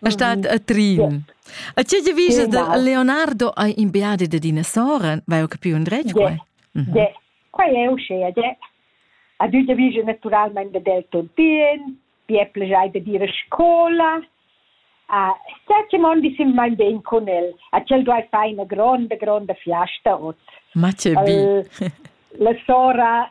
È stat a Trin. A tge ti vis da Leonardo hai in beadi da dinosaur? Vai ho capiu un dretg? De, de. Qua è uscea, de. A tü te vis naturalmente del tontien, pi è plejai de dire scola. Uh, Sette mondi sim mein ben con el. Acel duai fai una gronda, gronda fiasta ot. Ma ce bi. la sora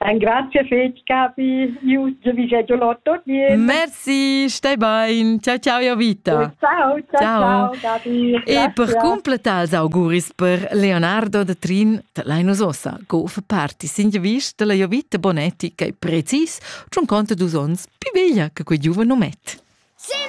Engrazia fetg, Capi. Io vi già lotto bien. Merci, stai bain. Ciao, ciao, io vita. Ciao, ciao, ciao, Capi. E per completar auguris per Leonardo de Trin, te l'hai nos ossa, go fa parti, sin ja vist della io vita bonetti, che precis, c'un conto dus ons, più veglia che quei giuven omet. Cindy!